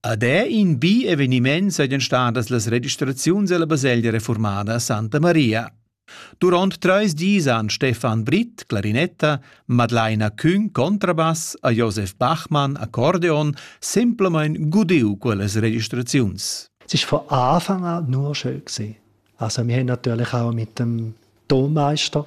Ad è in bi eveniment sajan stadas las registraziuns ella baselgia reformada Santa Maria. Durant treis dis han Stefan Britt, clarinetta, Madlaina Küng, contrabass, a Josef Bachmann, accordeon, semplamein gudiu quellas registraziuns. Es war von Anfang an nur schön gewesen. Also wir haben natürlich auch mit dem Tonmeister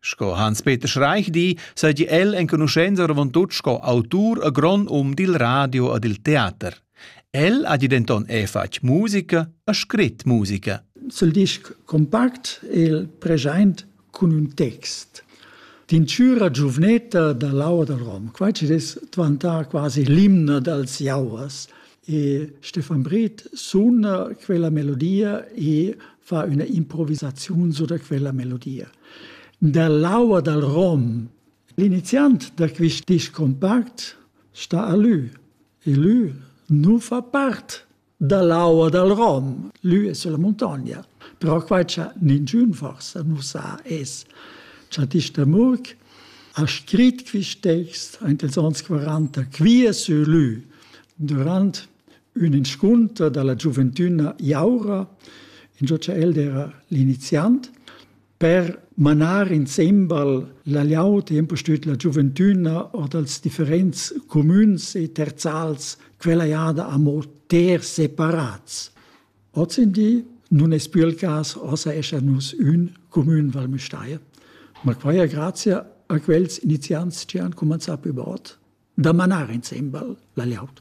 Sco Hans-Peter Schreich di, seigi el enconuschenza avon tut sco autur a grond um dil radio e dil teater. El ha denton è fatg musica e scrit musica. Sul disc compact el present cun un text Tincüra giuvnetta da l'aua dal Rom. Quai ci dess dvantà quasi l'imna dals jauers. E Stefan Britt suna quella melodia e fa üna improvisaziun su da quella melodia. Dall'aua dal rom, l'iniziant da quist disc compact sta a lü e lü nu fa part dall'aua dal rom. Lü es sulla muntogna. Però qua cha ninchün forsa nu sa es cha Tisch Murk ha scrit quist text aint ils ons 40 quia sur lü Durant ün inscunter da la giuventüna Jaura, ingio cha el d'eira l'iniziant, per manar insembel la glieud e impustüt la giuventüna or dals differents cumüns e terzals quella jada amo ter separats. Ozendi nun es pü il cas, ossa essan nus ün cumün Val Müstair. Ma quai è grazia a quels iniziants chi han cumanzà plü bod da manar insembel la liaud.